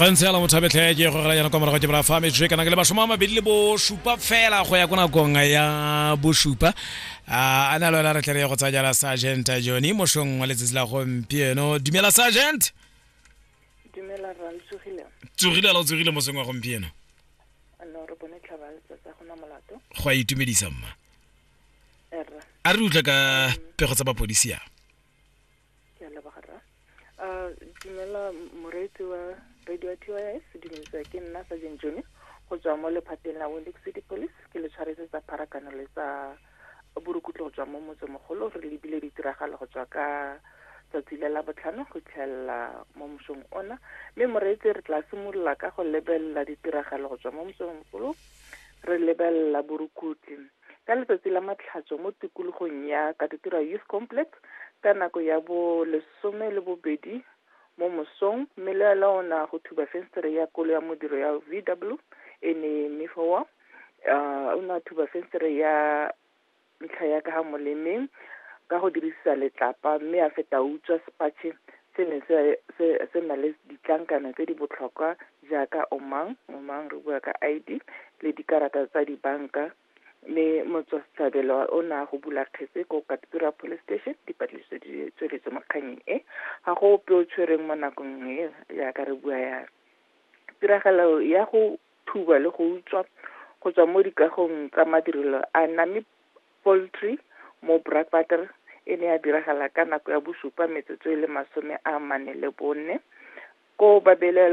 ga ntse yala motho a betlhe ke go gela yana kwa morago ke bra fa metswe kana ke le mashomo a mabedi le bosupa fela go ya ko nakong ya bosupa a na le wena re tlere go tsaya jala sergeant jone mošong wa letsatsi la gompieno dumela sergeant dumela ra tsogile tsogile la tsogile mosong wa gompieno no re bone tlhaba tsa gona molato go a itumedisa mma a re utlwe ka pego tsa bapodisi a ke a leboga rra a dumela moreetsi wa radio t y s dumelisa ke nna sa jeng jone go tswa mo lephateng la windix city police ke le tshwaretse tsa pharakano le tsa borukutlo go tswa mo motsemogolo re lebile ditiragalo go tswa ka tsatsi le la botlhano go itlhelela mo mosong ona mme moreetsi re tla simolola ka go lebelela ditiragalo go tswa mo mosong mogolo re lebelela borukutlo ka letsatsi la matlhatso mo tikologong ya Katutura Youth Complex ka nako ya bo lesome le bobedi mo mosong mme le la ona go thuba fenstere ya kolo ya modiro ya VW e ne mme fowa uh, o ne a thuba fenstere ya ntlha ya ka ga molemeng ka go dirisa letlapa mme a feta utswa sepatšhe Se ne se, se, se na le ditlankana tse di botlhokwa jaaka omang, omang re bua ka ID, le dikarata tsa dibanka. Mme motswasetlhabelo o ne a go bula kgetse ko Katsura Police Station, dipatlisiso di tsweletswe mo kganyeng e. Ga go ope o tshwereng mo nakong e, jaaka re bua yana. Tiragalo ya go thuba le go utswa go tswa mo dikagong tsa madirelo a name Poultry, mo Brakwater e ne ya diragala ka nako ya bosupa metsotso e le masome a mane le bone, koo ba belaelwang